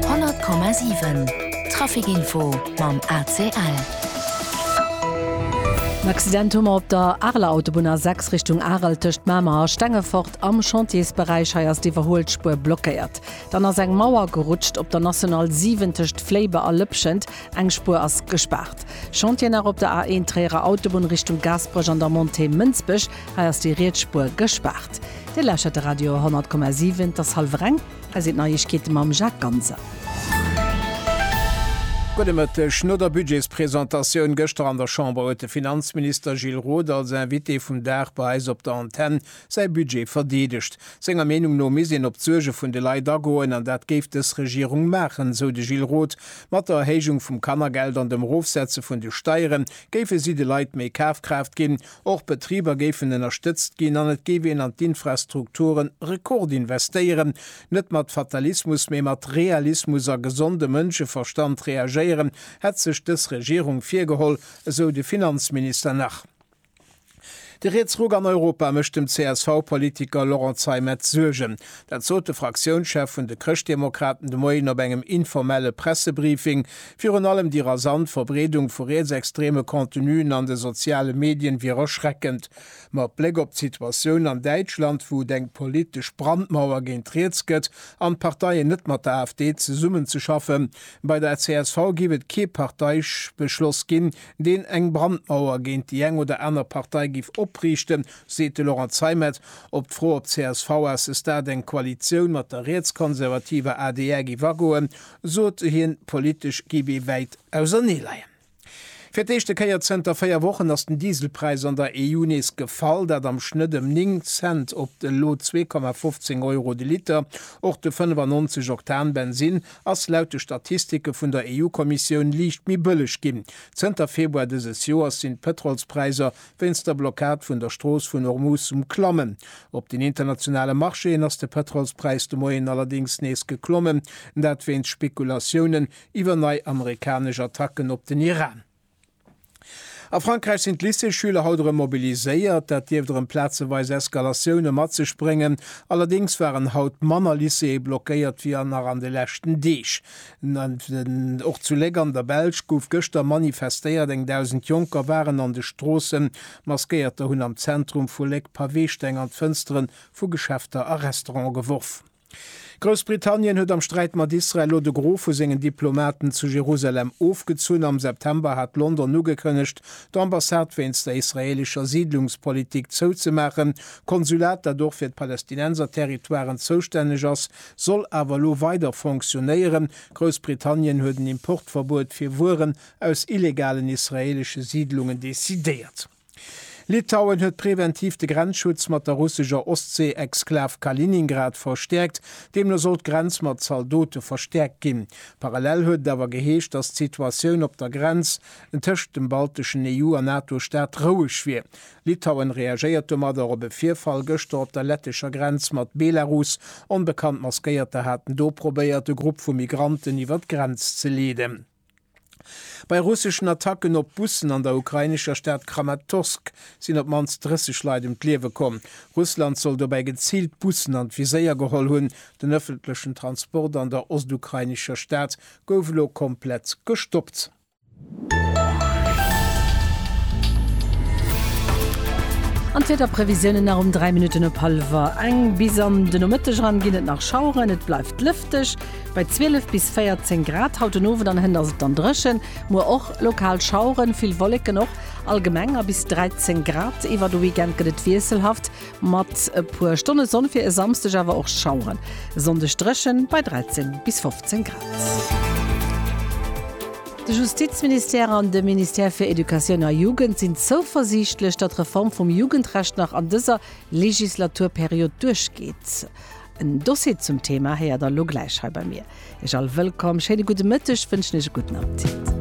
100,7 Traficinfo mam ACL. En Accident hu mer op der Areler Autobunn A6 Richtung Arel tëscht Mamer a Stengefort. Am Chantiersberäich hei ass d'Iwwerhuel Spuer blockéiert. Dann ass eng Mauer gerutscht op der National 7 tëscht Fléibe a Lëpschent. Eng Spuer ass gespaart. Chantier nach op der A1 Tréierer Autobunn Richtung Gaasperech an der Montée Mënsbech. Hei ass déi Rietsspuer gespaart. Dir lauschtert de Radio 100,7. Et ass hallwer eng. Hei sinn d'Neiegkeete mam Jacques Ganser. Gudde Mëtteg. No der Budgetspresentatioun gëschter an der Chamber huet de Finanzminister Gilles Roth als Invité vum Dag bei eis op der Antenn säi Budget verdeedegt. Senger Meenung no misst een op d'Suerge vun de Leit agoen an dat géif dës Regierung maachen, sou de Gilles Roth. Mat der Erhéijung vum Kannergeld an dem Erofsetze vun de Steiere géife si de Leit méi Kafkraaft ginn. Och d'Betriber géifen ënnerstëtzt ginn an et géif een an d'Infrastrukture rekordinvestéieren. Net mat Fatalismus, mee mat Realismus a gesonde Mënscheverstand reagéieren, hätt sech dës Regierung virgeholl, esou de Finanzminister nach. De Rietsruck an Europa mécht dem CSV-Politiker Laurent Zeimet Suergen. Dat sot de Fraktiounschef vun de Chrëschtdemokraten de Moien op engem informelle Pressebriefing. Virun allem déi rasant Verbreedung vu rietsextreme Contenuen an de soziale Medien wier erschreckend. Mat Bléck op d'Situatioun an Däitschland, wou et eng politesch Brandmauer géint riets gëtt an d'Parteien net mat der AfD zesummen ze schaffen, bei der csv géif et kee Parteibeschloss ginn, deen eng Brandmauer géint déi eng oder aner Partei géif opriichten, seet de Laurent Zeimet. Op d'Fro, ob d'csv à ce stade eng Koalitioun mat der rietskonservativer adr géif agoen, sot se hien, politesch géif ee wäit auserneeleien. Fir d'éischte Kéier zënter véier Wochen ass den Dieselpräis an der EU nees gefall, dat am Schnëtt ëm 9 Cent op elo 2,15 Euro de Liter. Och de 95 Oktan Bensinn ass laut de Statistike vun der EU-Kommissioun liicht méi bëlleg ginn. Zënter Februar dëses Joers sinn d'Pëtrolspräiser Wéinst der Blockad vun der Strooss vun Ormuz um Klammen. Op den internationale Marchéen ass de Pëtrolspräis de Moien allerdéngs nees geklommen, dat wéinst Spekulatiounen iwwer nei amerikanesch Attacken op den Iran. A Frankräich sinn d'Lycéesschüler haut erëm mobiliséiert. Dat dierft erëm plazeweis Eskalatioune mat sech bréngen. Allerdéngs waren haut manner Lycéeë blockéiert wéi nach an de leschten Deeg. Och zu Léck an der Belsch gouf gëschter manifestéiert. Eng Dausend Jonker waren an de Stroossen. Maskéierter hunn am Zentrum vu Léck Paweesteng an d'Fënstere vu Geschäfter a Restaurante geworf. Groussbritannien huet am Sträit mat Israel elo de Gros vu sengen Diplomaten zu Jerusalem ofgezunn. Am September hat London ugekënnegt, d'Ambassade wéinst der israeelescher Siidlungspolitik zouzemaachen. D'Konsulat, dat och fir d'Palästinenserterritoiren zoustänneg ass, soll awer elo weider fonctionnéieren. Groussbritannien huet en Importverbuet fir Wueren aus illegalen israeelesche Siidlungen decidéiert. Litauen huet preventiv de Grenzschutz mat der russescher Ostsee-Exklav Kaliningrad verstäerkt. Deemno soll d'Grenz mat Zaldote verstäerkt ginn. Parallel huet et awer geheescht, datt d'Situatioun op der Grenz tëscht dem balteschen EU a NATO-Staat roueg wier. Litauen reagéiert domadder op e Virfall gëschter op der lettescher Grenz mat Belarus. Onbekannt Maskéierter haten do probéiert, e Grupp vu Migranten iwwer d'Grenz ze leeden. Bei russeschen Attacken op Bussen an der ukrainescher Stad Kramatorsk sinn op d'mannst 30 Leit ëm d'Liewe komm. Russland soll dobäi geziilt Bussen an d'Viséier geholl hunn. Den ëffentlechen Transport an der ostukrainescher Stad gouf elo komplett gestoppt. An d'Wiederprevisiounen nach um 3 Minutten op hallwer eng. Bis an de Nomëtteg eran ginn et nach Schaueren, et bleift lëfteg bei 12 bis 14 Grad. Haut den Owend an Hënt ass et dann dréchen, muer och lokal Schaueren, vill Wolleken och, allgemeng a bis 13 Grad. Iwwer de Weekend gëtt et wiesselhaft, Mat e puer Stonne Sonn fir e Samsdeg awer och Schaueren. Sonndeg dréchen bei 13 bis 15 Grad. De Justizministère an de Ministère fir Educatioun a Jugend sinn zouversiichtlech, datt d'Reform vum Jugendrecht nach an dëser Legislaturperiod duerchgeet. En Dossier zum Thema héiert der lo gläich hei bei mir. Iech all wëllkomm, schéine gudde Mëtteg wënschen iech e gudden Appetit.